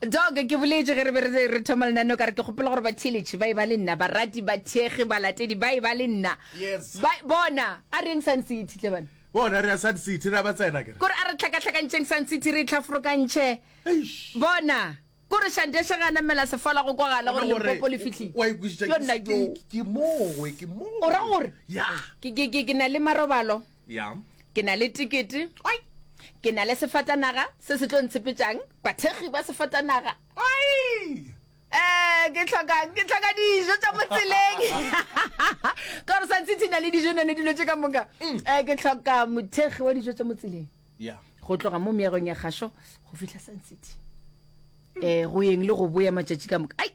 Doc, ke boletše ge re be re re thoma lenaneo ka re ke kgopela gore batheeletše ba e ba le nna, barati, bathekgi, balatedi ba e ba le nna. Yes. Ba, bona, a reng Sun City tle bana? Bona, re a Sun City, re a ba tsena ke re. Kore a re tlhakatlhakantšheng Sun City re e tlhaforokantšhe. Eish. Bona, kore Shandesha ge a namela sefala go kwagala gore Bona gore, Limpopo le fihlile. wa ikwešiša Yo nna ke- ke- ke- ke moo, we, ke moo. O ra gore? Ya. Ke, ke, ke, ke na le marobalo. ya ke na le tikete ke na le sefatanaga se se tlo ntshepetšang bathekgi ba sefatanaga um ke tlhokang ke tlhoka dijo tša motseleng kore santshitshi na le dijo nane dilo tše ka moka um ke tlhoka mothekgi wa dijo tša motseleng ya go tloga mo meagong ya kgašo go fihla santshitshi um go yeng le go boya matšatši ka moka ai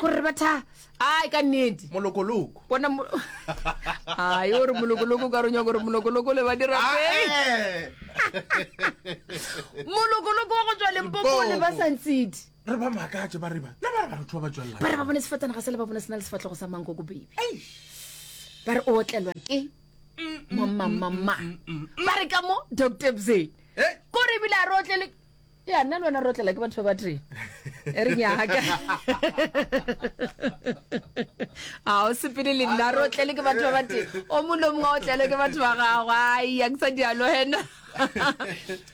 gore re batha ai ka nnete molokoloko bona mo- ai o re molokoloko ka ronya gore molokoloko le ba dira Ah, peng eh. molokoloko wa go tswa lempopo o le ba Limpopo. santsidi re ba makatše ba riba le ba re batho ba ba tswelela ba re ba bone sefatana ga se le ba bone se na le sefatlhogo sa manko ko bebe ba re o otlelwa ke mamamama ba re ka mo doctor bzee Eh? kore ebile a re otlele ya nna le wena re otlela ke batho ba batee e re nyaka a o sepele le nna re otlele ke batho ba batee o mone o mongwe a otlele ke batho ba gago ai ya ke sa dialo hena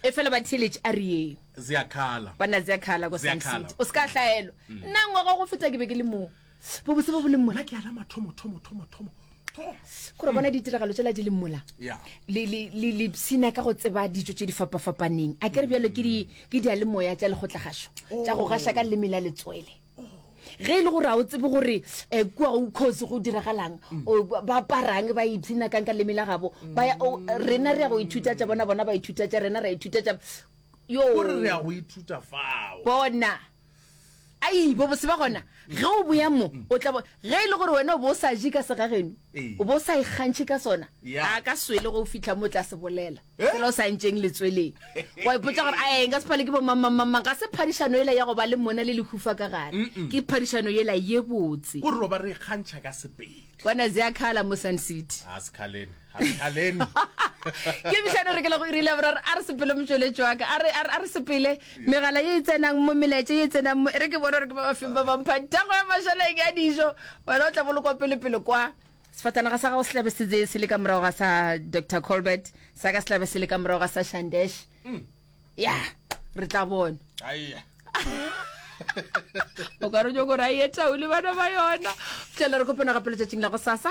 e fela ba theletše a re ee ziakhala banna ziakhala ko Ziakhala. sancity o se ka hlaelo nna ngwaga go feta ke be ke le moo Bobose bo bo leng mola ke ala mathomo, thomo, thomo, thomo, thomo. Gore bona ditiragalo tsela di leng mola. Yeah. Le, le, le, le psina ka go tseba ditso tše di fapafapaneng. A ke re bjalo ke di, ke dialemoya tša lekgotlagasho, tša go gaša ka leleme la letswele. Ge e le gore ga o tsebe gore eh, kua go kgosi go diragalang, o, ba- ba aparang, ba ipsina kang ka leleme la gabo, ba ya, o, rena re ya go ithuta tša bona, bona ba ithuta tša rena, ra ithuta tša. Yo, Gore re a go ithuta fao. bona. ai bobose ba gona ge o boya mo o tla bo ge e le gore wena o bo o sa je ka segageno o bo o sa ikgantšhe ka sona a ka swele go o fitlha mo o tla se bolela eh? fela o sa ntšeng letsweleng wa ipotsa gore ae nka sephale ke bomamamamang ga se phadišano ela ya go ba le mona le lehufa ka gare ke phadišano ela ye botse gore ba re ikgantšha ka sepele kwana zea khala mo sun city a sekhalene ke bišane re ke le go irile ya boraro a re sepele motsweletši wa ka a re- a re- a re sepele megala ye e tsenang mo melaetša ye e tsenang mo e re ke bone gore ke ba bafeng ba bampha thago ya mašaleng ya dijo wena o tla bolokwa pelepele kwa sefatanaga sa gago se tlabe se tseye se le ka morago ga sa dr colbert sa ka se tlabe se le ka morago ga sa shandesh ya re tla bona Aiya. o ka re jo gore a ye taole bana ba yona tlele re kopana gape letšatšing la go sasa